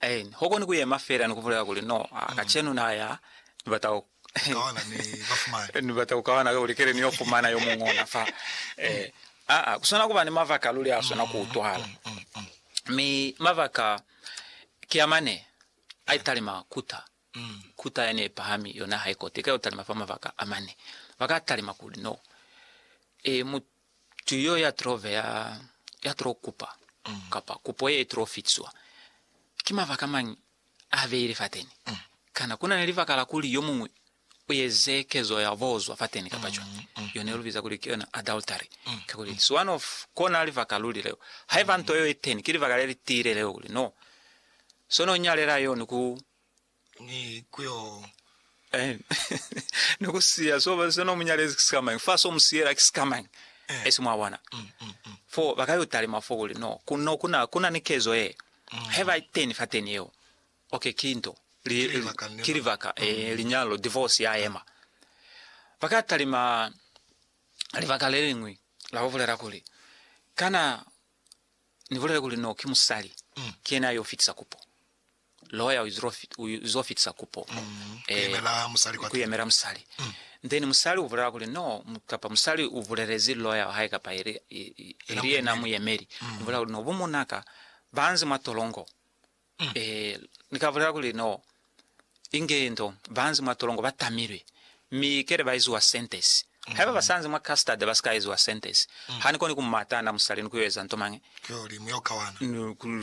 Aen. Ho koni ku yema fela ni ku bulela kuli, No, a, kacenu na ya, Ni bata ku, Ni bata ku kawana kakuli kele ni yo fumana yo muñwi ona fa. Eh, aa, ku swana kuba ni mabaka luli a swana ku utwahala. Mi mabaka ki a mane, a italima kuta, kuta yani ye pahami, yona ha i kote, ika yo talima fa mabaka a mane. Ba ka talima kuli, No, e, mu, Mutu yo ya tilo ve ya, ya tilo kupa, kapa kupo ye itilo fitiswa, ki mabaka mañi a beile fateni? Kana kuna ni libaka la kuli yo muñwi u eze kezo ya bozwa fateni kapa cwañi? Yo ne lu biza kuli ki yona adultery. Kakuli, it's one of kona libaka luli leo. Haiba nto yeo iteni, ki libaka le li tiile leo kuli, no, so no nyalela yo ni ku ni ku yo. Amen. Ni ku siya so ba se no munyalezi ki sikamañi fa so musiyela ki sikamañi eh. esi mwa bona mm, mm, mm. fo ba ka yo talima fo kuli no ku no kuna kuna ni kezo ye mm. he ba teni fa teni yeo okay ki nto li ki libaka mm. eh, linyalo divorce ya ema ba ka talima libaka le lingwi la go bolela kuli kana ni bolela kuli no ki musali mm. ke yena yo fitisa kupo Lawyer uzo fitisa kupo ku yemela musali then musali ubulela kuli no kapa musali ubulelezi lawyer wahae kapa ili yena muyemeli ubulela kuli no bumonaka banzi mwa tolongo nika bulela kuli no inge ndo banzi mwa tolongo batamilwe mi kele baiziwa sentence Haiba basanzi mwa custard basikaezwa sentence, hanikoni kumata na musali ni kuyo eza nto mañi,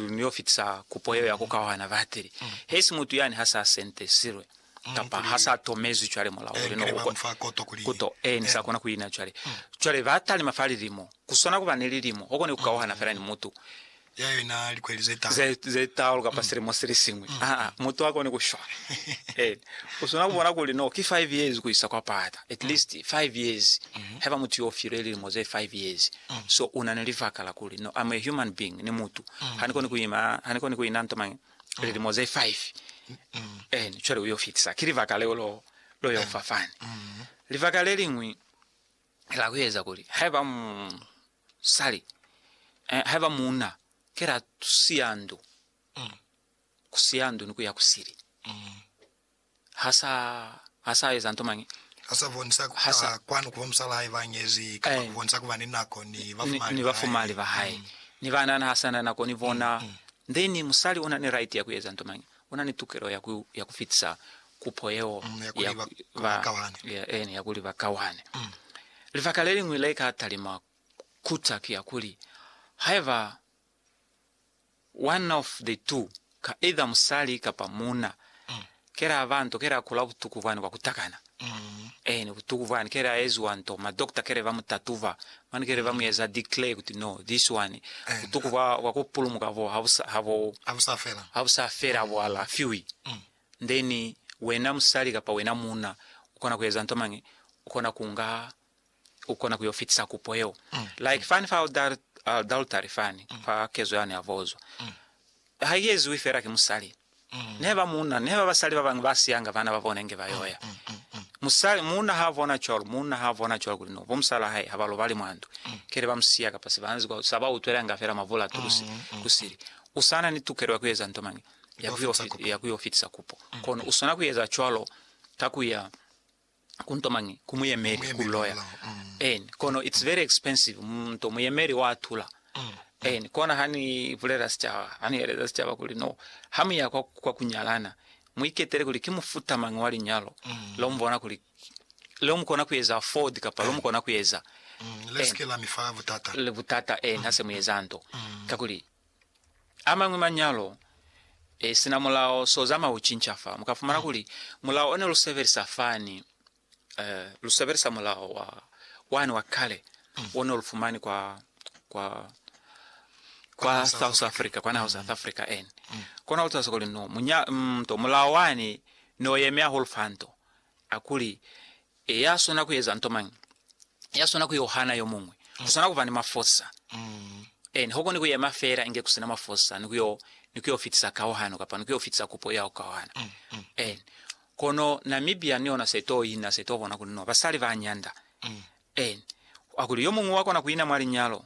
niyo fitisa kupo yeo ya kukawana batili hesi mutu yani hasa sentesilwe kapa hasa tomezwi cwale mulao uli no ukwe kuto e ni sa kona kuina cwale. Cwale batalima fa lilimo, kuswana kuba ni lilimo, ukoni kukawana fela ni mutu ya yona likweli ze talu. Ze talu kapa silimo silisiñwi. Aa, mutu ha koni kushwa. Ee, u swana kubona kuli, no, ki five years kuisa kwa pata. At least five years. Haiba mutu yo u filwe lilimo ze five years, so una ni libaka la kuli, no, I'm a human being, ni mutu, ha ni koni kuima, ha ni koni kuina nto mañi lilimo ze five. Eena, cwale u yo fitisa. Ki libaka leo lo, lo yo fa fani. Libaka leliñwi. Kela kueza kuli haiba musali, eh, haiba muuna, kela tusiya ndu, mm. kusiya ndu ni kuya kusili. Mm. Hasa, hasa eza nto mangi. Hasa bonisa hasa kwanu kuba musala haiba ngezi, kapa eh. kubonisa kuba ni nako ni bafumali. Ni bafumali ba hae. Mm. Ni bana na hasa na nako ni bona. Mm. mm. Then musali una ni right ya kueza nto mangi. U na ni tukelo ya ku, ya ku fitisa kupo yeo Mm, ya kuli ba, ba kawane. ya, eeni, ya kuli ba kawane. Mm. Libaka le liñwi le ka talima kuta ki ya kuli, haiba one of the two, ka either musali kapa muuna, Mm. ke la ba nto, ke la kula butuku bwani bwa ku takana, Eeni, butuku bwani kele a eziwa nto, ma doctor kele ba mu tatuba, mane kele ba mu eza declare kuti no, this one, butuku bwa, bwa ku pulumuka bo ha bu sa, ha bo, Ha bu sa fela. ha bu sa fela, bu alafiwi. Then, wena musali kapa wena muuna, u kona ku eza nto mañi? U kona ku nga u kona ku yo fitisa kupo yeo. Like fani fa adultery fani, fa kezo yani ya vozwa, ha i eziwi fela ki musali. Nehe ba muuna, nehe ba basali ba bañwi ba siyanga bana ba bona inge ba yo ya. Musali, muuna ha bona cwalo, muuna ha bona cwalo kuli no, bo musala hae ha ba lobali mwa ndu, kele ba mu siya kapa se ba nzi kwa, sa ba utwelanga fela mavula a tulusi ku sili. U sa na ni tukelo ya ku eza nto mañi? Ya ku yo fitisa kupo. Kono u swana ku eza cwalo ka ku ya. ku nto mañi ku muyemeli ku loya en kono it's very expensive mu nto muyemeli wa tula en kona ha ni bulela sicaba ha ni eleza sicaba kuli no ha muya kwa, kwa kunyalana muiketele kuli ki mufuta mañi wa linyalo lo mubona kuli lo mukona ku eza afford kapa lo mukona ku eza le sike la mifa butata le butata en ha se mu eza nto kakuli amañwi manyalo e sina mulao so zama u cinca fa muka fumana kuli mulao one lu sebelisa fani eh, lu sebelisa mulao wa wani wa kale one lu fumani kwa kwa kwa South Africa kwa naho South Africa en kona lu tsa kuli no munya mm, to mulao wani no yeme hahulu fanto akuli E, ya swana ku eza nto mañi? Ya swana ku yo hana yo muñwi. Ku swana ku ba ni mafosa. E, ni ho koni ku yema fela inge ku si na mafosa, ni ku yo, ni ku yo fitisa kauhano, kapa ni ku yo fitisa kupo ya ku kauhana. E, kono Namibia ni yona se to ina, se to bona kuli no basali ba nyanda. E, kwa kuli yo muñwi wa kona ku ina mwa linyalo,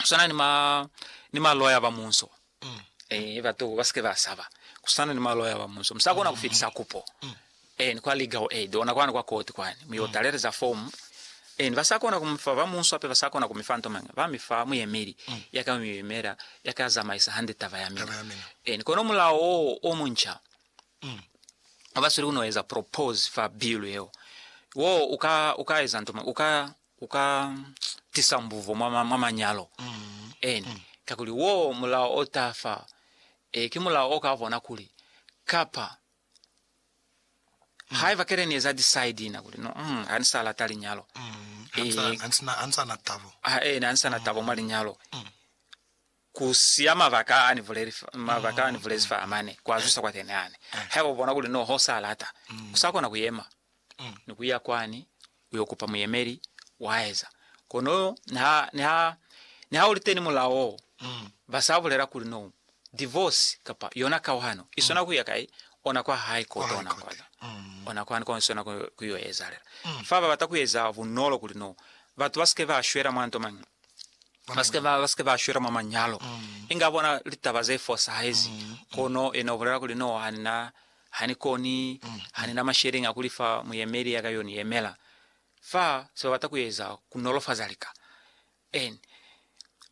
kusana ni ma ni maloya ba munso mm. eh batu ba sike ba saba kusana ni maloya ba munso msa kona kufitisa kupo mm. eh ni kwa legal aid ona kwana kwa court kwani mu yo taleleza form eh ba sa kona kumfa ba munso ape ba sa kona kumifa nto manga ba mifa muyemeli mm. ya ka muyemela ya ka zamaisa hande taba ya mina eh ni kono mulao o muncha mm. abasuli kunoeza propose fa bill yeo wo uka uka eza nto manga uka ku ka tisa mbuvo mwa, mwa, mwa manyalo eni, kakuli wo mulao o ta fa, e, ki mulao o ka bona kuli, kapa haiba kele ni eza decide na kuli no, mm, ha ni sa lata linyalo, Ha ni sa- e, ha ni sa- ha ni sa na tabo. ha, e, ha ni sa na tabo mwa linyalo, Ku siya mabaka a ni buleli, mabaka a ni bulezi fa amane kwa zwisa kwateni hane. Haiba u bona kuli no ho sa lata, u sa kona ku yema ni ku ya kwani u yo kupa muyemeli, wa eza. Kono niha, niha, niha u li teni mulao wo, ba sa bulela kuli no divorce kapa yona kauhano i swana ku ya kai, ona kwa hae ko tona kwata, ona kwani ko i swana ku, ku yo ezalela. Fa ba bata ku eza bunolo kuli no batu ba si ke ba shwela mwa nto mañi, ba si ke ba shwela mwa manyalo, inga bona litaba ze fosahezi. Kono yena ubulela kuli, No, hanina, hanikoni, hanina masheleñi a kulifa muyemeli ya ka yo ni yemela. Fa se babata kueza kunolofaza lika. En.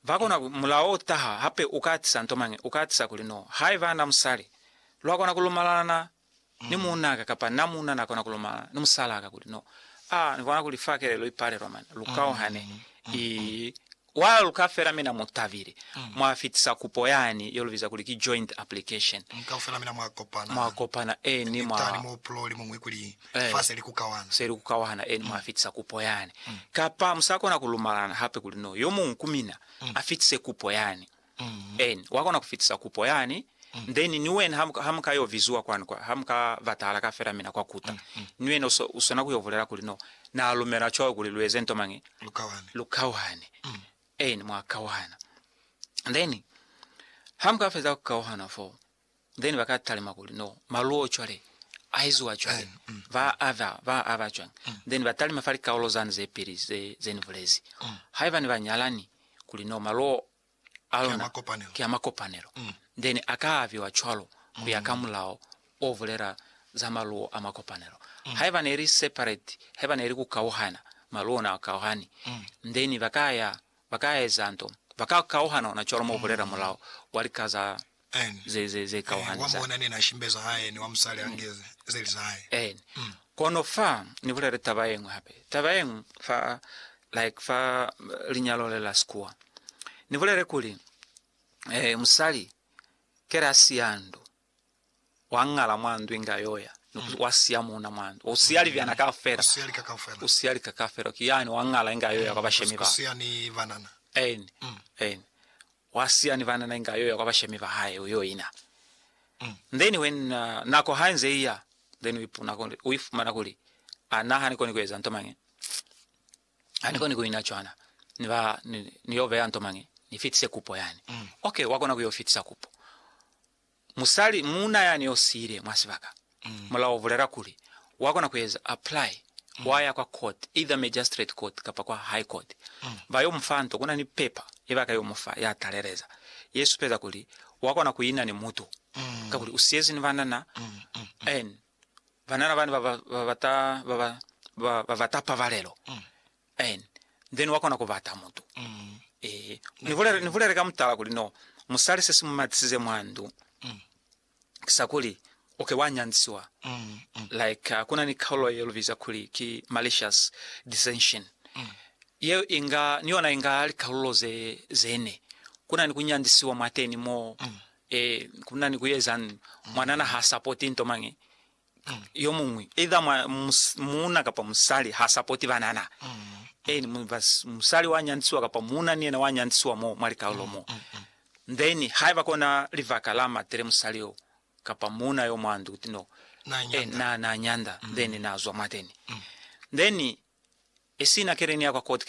Ba kona ku, mulao o taha hape, u ka atisa nto mañi, u ka atisa kuli, No, haiba na musali, lwa kona kulumalalana ni muunaka kapa na muuna na kona ku lomana ni musalaka kuli, No, a ni bona kuli fa kelelo i palelwa mane, lu kauhane, i wa luka fela mina mu tabile, mwa fitisa kupo yani ye lu biza kuli ki joint application. Kaufela mina mwa kopana. Mwa kopana, eni, mwa. Mitani mo pulou li muñwi kuli, Eh, fa se li ku kauhana. se li ku kauhana, eni, mwa fitisa kupo yani. Kapa mu sa kona ku lumalana hape kuli, No, yo muñwi ku mina a fitise kupo yani. Eeni, wa kona ku fitisa kupo yani, then ni wena ha, ha muka yo viziwa kwani, kwa, ha muka batahala ka fela mina kwa kuta, ni wena uso, usona ku yo bulela kuli, No, Na lumela cwawe kuli lu eze nto mañi? Lu kawane. Lu kawane. Eeni, mwa kawana. Then, ha muka feza ku kauhana foo, Then ba ka talima kuli no maluo cwale a eziwa cwale mm, mm, ba mm. ava ba ava cwang mm. then ba talima fa likaulo zani ze pili ze ze ni bulezi mm. haiba ni ba nyalani kuli no maluo a lona ke a makopanelo mm. then a ka aviwa cwalo ku ya ka mm. mulao o vulela za maluo a makopanelo mm. haiba ne li separate haiba ne li ku kauhana maluo na kauhani mm. then ba ka ya ba ka eza nto ba ka kauhana ona cwalo mo vulela mm. mulao wa likaza ze kauhani za. Eeni. Kono fa Ni bulele taba yeñwi hape, taba yeñwi fa, like fa linyalo le la Sikuwa. Ni bulele kuli, eh, musali kele a siya ndu, wa ngala mwa ndu inge a yoya, Mm. wa siya muna mwa ndu, u siya mm. libyana kaufela, u siya lika kaufela, ki yani wa ngala inge a yoya mm. kwa bashemi ba, eeni, mm. eeni, Wa siya ni banana inge ayo ya kwa bashemi ba hae uyo ina. Then when uh, nako ha inze iya, then uipuna kuli, uifumana kuli, ana ha nikoni kueza nto mangi. Ha nikoni kuina cwana. Ni ba, ni, ni yo beya nto mangi. Ni fitise kupo yani. Okay, wakona kuyo fitisa kupo. Musali, muuna yani yo siile mwa sibaka, mulao u bulela kuli wa kona ku eza apply, wa ya kwa court, either magistrate court kapa kwa high court. Ba yo mufa nto, kuna ni paper ye ba ka yo mufa ya taleleza, ye supeza kuli wa kona ku ina ni mutu, kakuli u siyezi ni banana and banana bani ba ba bata, ba ba, ba ba bata pabalelo. And then wa kona ku bata mutu. Ehe. Ni bulele, ni bulele ka mutala kuli no, musali se si mu matisize mwa ndu, ki sa kuli u ke wa nyanzisiwa. Like, uh, ku na ni kaulo ye lu biza kuli ki malicious dissension. Yeo i nga, ni yona i nga likaulo ze, ze ne. Ku na ni ku nyanzisiwa mwateni mo, eh, ku na ni ku ezani, mwanana ha supporti nto mañi, yomuñwi, either mwa, muuna kapa musali, ha sapoti banana. Eeni, mu, ba, musali wa nyantisiwa kapa muuna ni yena wa nyantisiwa mo mwa likaulo mo. Then, haiba kona libaka la matele musali yo, kapa muuna yo mwa ndu, kuti no, Na eh, nyanda. na, na nyanda, then na zwa mwateni. Then, esina keleni ya kwa court,